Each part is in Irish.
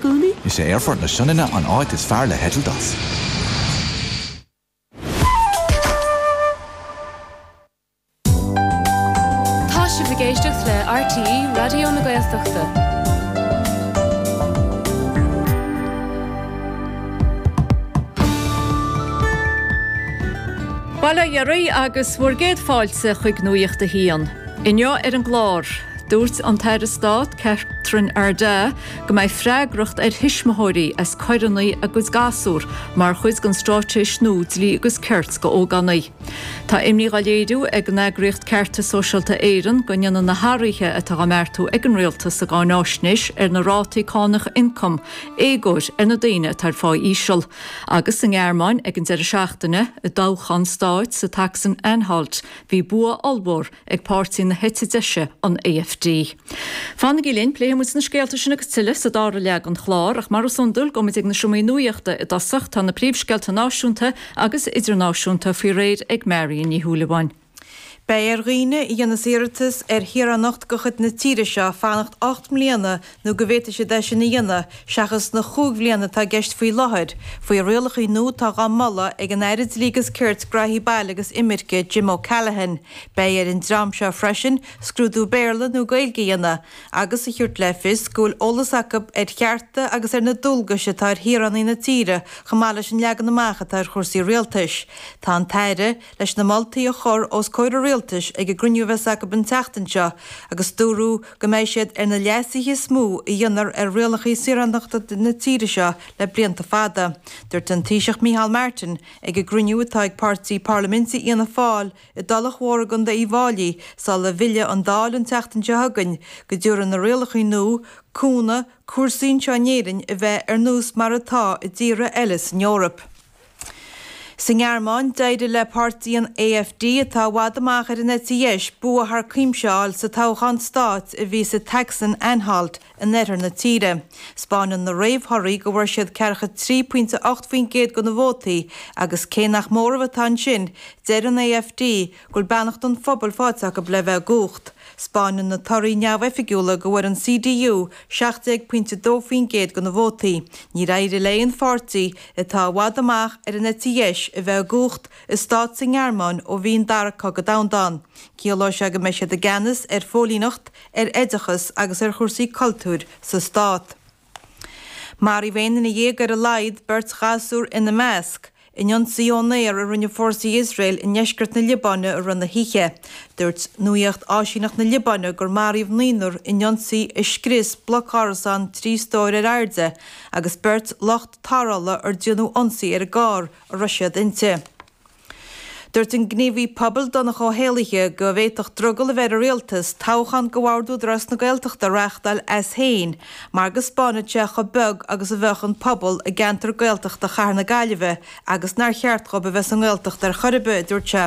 gcónaí. Is é Aerfort na Sionainne an áit is fearr le heitilt as. Tá sibh ag éisteacht le RTÉ Raidió na Gaeltachta. Bail ó Dhia oraibh agus bhur gcéad fáilte chuig Nuacht a hAon. Inniu ar an gclár, dúirt an tAire Stáit Catherine Ardagh, Go mbeidh freagracht ar thuismitheoirí as coireanna a gcuid gasúr mar chuid den straitéis nua Dlí agus Cirt do Ógánaigh. Tá imní á léiriú ag an eagraíocht Ceartas Sóisialta Éireann go ndéanann na hathruithe atá á mbeartú ag an Rialtas sa gcáinaisnéis ar na Rátaí Cánach Ioncaim éagóir ar na daoine atá ar phá íseal. Agus sa nGearmáin ag an deireadh seachtaine, i dtoghchán stáit sa tSacsain-Anhalt, bhí bua ollmhór ag páirtí na heite deise, an AfD. Fanaigí linn, pléifidh muid na scéalta sin agus tuilleadh sa dara leath den chlár, ach mar is iondúil, gabhfaidh muid ag na seomraí nuaíochta i dtosach. Tá na príomhscéalta náisiúnta agus idirnáisiúnta faoi réir ag Marion Ní Shúilleabháin. Beidh ar dhaoine a dhéanas iarratas ar shaoránacht de chuid na tíre seo fanacht ocht mbliana nó go bhféadfaidh siad é sin a dhéanamh seachas na chúig bhliana atá i gceist faoi láthair, faoi rialacha nua atá dhá moladh ag an Aire Dlí agus Cirt, Graithí Baile agus Imirce, Jim O'Callaghan. Beidh ar an dream seo freisin scrúdú Béarla nó Gaeilge a dhéanamh agus a thabhairt le fios go bhfuil eolas acu ar chearta agus ar na dualgais atá ar shaoránaigh na tíre chomh maith leis an leagan amach atá ar chúrsaí rialtais. Tá an tAire. leis na moltaí a chur os comhair an Rialtais ag an gcruinniú a bheas acu an tseachtain seo agus dúradh go mbeidh siad ar na leasuithe is mó a dhéanfar ar rialacha saoránachta na tíre seo le blianta fada. Dúirt an Taoiseach Micheál Martin ag an gcruinniú atá ag páirtí parlaiminte Fhianna Fáil i dTulach Mhór i gContae Uíbh Fhailí sula bhfillfidh an Dáil an tseachtain seo chugainn go dtabharfaidh na rialacha nua cúnamh cúrsaí anseo in Éirinn a bheith ar nós mar atá i dtíortha eile san Eoraip. Sa nGearmáin, d'éirigh le páirtí an AfD, atá i bhfad amach ar an eite dheis, bua thar cuimse a fháil sa toghchán stáit a bhí sa tSacsain-Anhalt, in oirthear na tíre. 'Spáineann na réamhthorthaí go bhfuair siad 43.8% de na vótaí agus cé nach móramh atá ansin, deir an AfD Go bhfuil beannacht an phobail faighte acu le bheith i gcumhacht. 'Spáineann na torthaí neamhoifigiúla go bhfuair an CDU 17.2% de na vótaí. Níor éirigh le haon pháirtí, atá i bhfad amach ar an eite dheis, a bheith i gcumhacht i stát sa nGearmáin ó bhí an Dara Cogadh Domhanda ann. Ciallóidh sé go mbeidh siad i gceannas ar phóilíneacht, ar oideachas agus ar chúrsaí cultúir sa stát. Maraíodh aon nduine dhéag ar a laghad, beirt ghasúr ina measc, in ionsaí ón aer a rinne fórsaí Iosrael i ndeisceart na Liobáine i rith na hoíche. Dúirt nuaíocht áisíneacht na Liobáine gur maraíodh naonúr in ionsaí a scrios bloc árasán trí stóir ar airde agus beirt lucht tarrthála ar déanadh ionsaí ar an gcarr a raibh siad inti. Dúirt an gníomhaí pobail Donncha Ó hÉallaithe go bhféadfadh drogall a bheith ar an Rialtas toghchán do bhord Údarás na Gaeltachta a reáchtáil as fhéin mar go 'spánfadh sé chomh beag agus a bheadh an pobal i gceantar Gaeltachta Chathair na Gaillimhe agus nár cheart dhóibh a bheith sa nGaeltacht ar chor ar bith, a dúirt sé.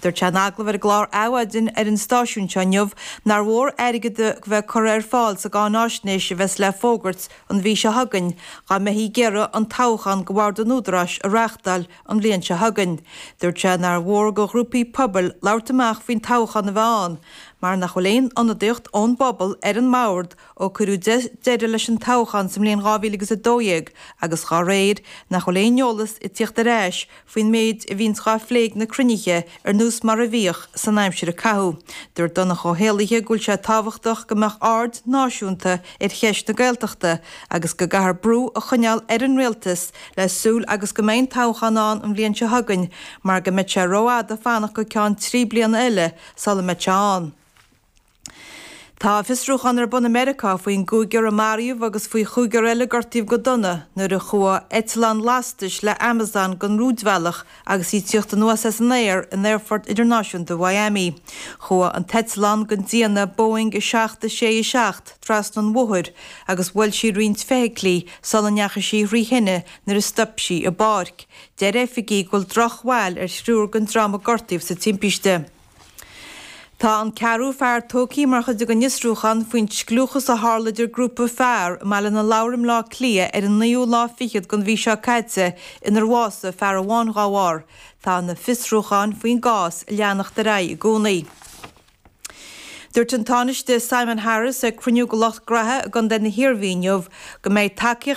Dúirt sé in agallamh ar an gclár Adhmhaidin ar an stáisiún seo inniu nár mhór airgead a bheith curtha ar fáil sa gcáináisnéis a bheas le fógairt an mhí seo chugainn dá mbeithí ag iarraidh an toghchán do bhord an Údaráis a reáchtáil an bhliain seo chugainn. Dúirt sé nár mhór do ghrúpaí pobail labhairt amach faoin toghchán a bheith ann mar nach bhfuil aon ionadaíocht ón bpobal ar an mbord ó cuireadh deireadh leis an toghchán sa mbliain 2012 agus dá réir, nach bhfuil aon eolas ag tíocht ar ais faoin méid a bhíonns dhá phlé ag na cruinnithe. ar nós mar a bhíodh san aimsir a caitheadh. Dúirt Donncha Ó hÉallaithe go bhfuil sé tábhachtach go mbeadh aird náisiúnta ar cheist na Gaeltachta agus go gcaithfear brú a choinneáil ar an rialtas le súil agus go mbeidh an toghchán ann an bhliain seo chugainn mar go mbeidh sé rófhada fanacht go ceann trí bliana eile sula mbeidh sé ann. Tá fiosrúchán ar bun i Meiriceá faoin gcúigear a maraíodh agus faoi chúigear eile a gortaíodh go dona nuair a chuaigh eitleán lastais le Amazon den rúidbhealach agus í ag tíocht anuas as an aer in Aerfort Idirnáisiúnta Mhiami. Chuaigh an t-eitleán den déanamh Boeing 767 trasna an bhóthair agus bhuail sí roinnt feithiclí sula ndeachaigh sí thrí thine nuair a stop sí i bpáirc. Deir oifigigh go bhfuil drochbhail ar thriúr den dream a gortaíodh sa timpiste. Tá an ceathrú fear tógtha mar chuid den fhiosrúchán faoin scliúchas a tharla idir grúpa fear i mBaile na Lobhar i mBleá Cliath ar an naoú lá fichead den mhí seo caite inar bhásaigh fear amháin dá bharr. Tá na fiosrúcháin faoin gcás ag leanacht ar aghaidh i gcónaí. Dúirt an Tánaiste Simon Harris ag cruinniú de lucht gnaithe i gContae na hIarmhí inniu go mbeidh tacaíocht